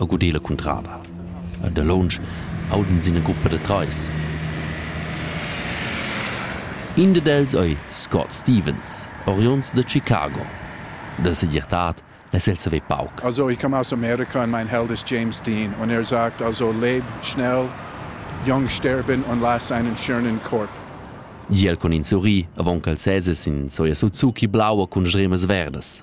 e guder la cuntrada. E da lounsch aud'ins ina gruppa da trais. In dad els ei Scott Stevens, oriunds da Chicago. Da segirtad es el saver pauc. Also, ich komme aus Amerika und mein Held ist James Dean. Und er sagt also, leb schnell, jung sterben und lass einen schönen Korb. Giel con in sorri, avon ch'el sese sin soia Suzuki blaua cun stremas verdas.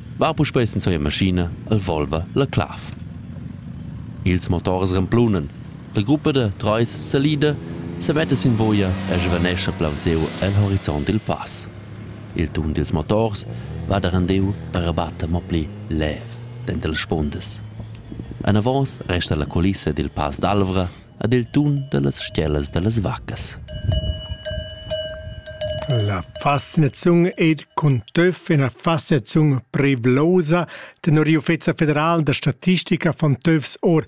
va puspei senza sia maschina el Volva la clav. Ils motors remplunan. La gruppa da treis salida semetta sin via e svanescha plaunsiu el horizont il pass. Il tun dils motors va da rendiu per batter mo pli lev denter las spundas. Anavos resta la culissa dil Pass d'Alvra ad il tun da las stellas da las vaccas. La fascinaziun ed cuntøfina fascinaziun privlosa tenor l'Ufficio federal da statistica von TÜVs or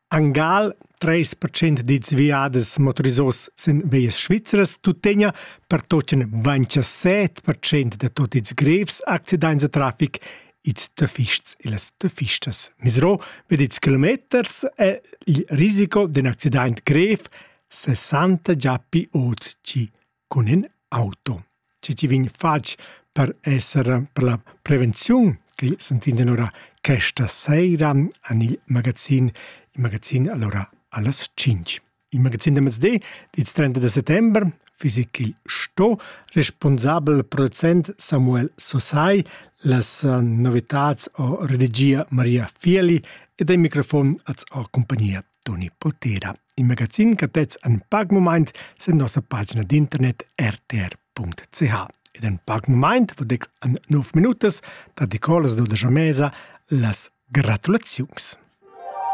Angal 30% dits viades motorisos sin veias svizzeras tuttegna per tocen 27% da tot its grevs accidents da traffic ils töffists e las töffistas. Misero ved ils kilometers è il risico d'un accident grev 60 giappi oggi con in auto. Ci ci vin fatg per essere per la prevenzione che sentinsen ora questa sera en il magazin, il magazin allora allas 5. Il magazin da mezdi dits 30 da settember fiss il sto responsabel producent Samuel Sosai, las novitats o redagia Maria Fieli ed il microfon az o compagnia Toni Poltera. Il magazin catez an pag moment sen nossa pagina d'internet rtr.ch. Ed en pag moment vodec an 9 minutas da Nicolas Doda Mesa las gratulaziuns.